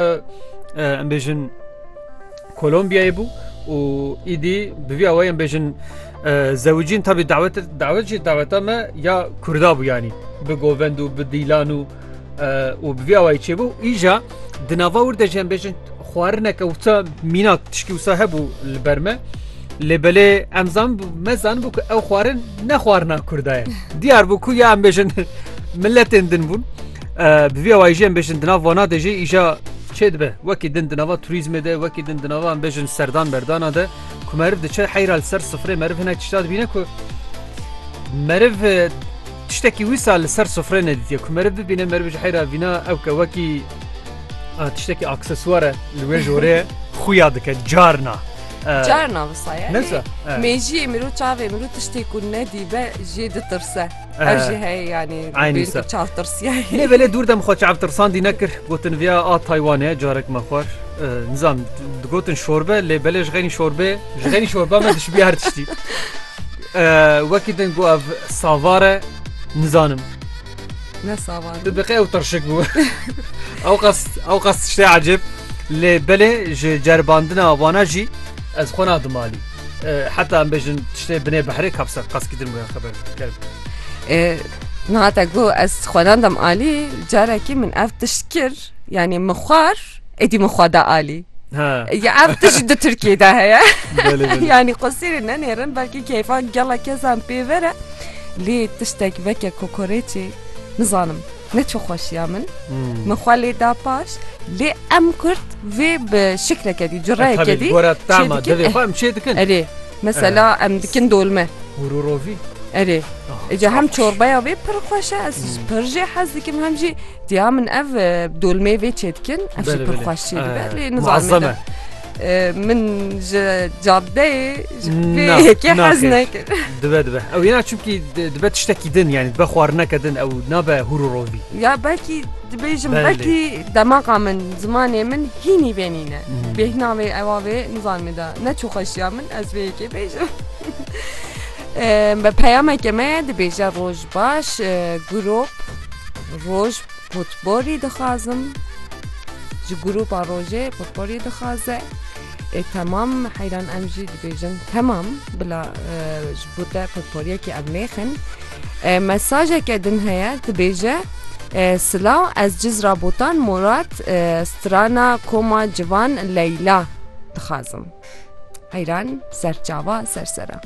Em bêjin Kolombiyayê bû û îdî bi vî awayê em bêjin zewicîn tabî dawet dawet jî daweta me ya Kurda bû yanî bi govend û bi dîlan û û bi vî awayê çêbû îja di nava wir de jî em bêjin xwarineke wisa mîna tişkî wisa hebû li ber me. Lê belê em zan me zanbû ku ew xwarin ne xwarina Kurda ye. Diyar bû ku ya em bêjin milletên din bûn. Bi vî awayî jî em bêjin di nav vana de jî îja çê dibe wekî din di nava turîzmê de wekî din di nava em bêjin serdan berdana de ku meriv diçe heyra li ser sifrê meriv hinek tişta dibîne ku meriv tiştekî wî sal li ser sifrê nedîtiye ku meriv bibîne meriv ji heyra vîna ew ke wekî tiştekî aksesuare li wê jorê xuya dike carna. Carna visaye. Nesa. Mêjiyê mirû çavê mirû tiştê ku nedîbe jê ditirse. Ev jî heye yanî çavtirsiyayê belê dûr dem xwe çavtirsandî nekir gotin viya a Taywanê carek me xwar nizam digotin şorbe lê belê ji xeynî şorbe ji xeynî şorba me dişbî her tiştî wekî din got ev savare nizanim ne savan diqe ew tirşik bû ew qas ew qas tiştê ecêb lê belê ji ceribandina wana jî ez xwe nadimalî Heta em bêjin tiştê binê behrê kapsa qaskî din wêya xeber kerim. Nihate got ez xwenandam alî carekî min ev tişt kir yanî min xwar êdî min xwada alî. Ya ev tişt di Tirkiyê de heye yanî qosîrê nenêrin belkî keyfa gela kesan pê vere lê tiştek veke kokorêçê nizanim. Ne çi xweşiya min min xwe lê da paş lê em kurd vê bi şikleke dî cureyeke dî em çê dikin Erê mesela em dikin dolme Hûrûrovî Erê Ece hem çorbaya vê pir xweşe ez pir jê hez dikim hem jî diya min ev dolmê vê çê dikin ev pir xweş çê dibe lê nizazeme. Min ji caddeyê ji vê Na, yekê na, hez kêş. nekir. Dibe dibe. Ew yena çimkî di- dibe tiştekî din yani dibe xwarineke din ew nabe hûr û rovî. Ya belkî dibêjim Belê. belkî demaqa min zimanê min hînî vê nîne. Hmm. Bêhna vê ewa vê nizanim da ne çû xweşiya min ez vê yekê bêjim. Em, Bi peyameke me dibêje roj baş e, gurop roj Potporî dixwazim ji grûpa rojê potporî dixwaze ê temam heyran em jî dibêjin temam bila ji bo te potporiyekê ev nêxin mesajeke din heye dibêje Silaw ez ciz rabotan Murat strana koma civan Leyla dixwazim heyran serçava sersera.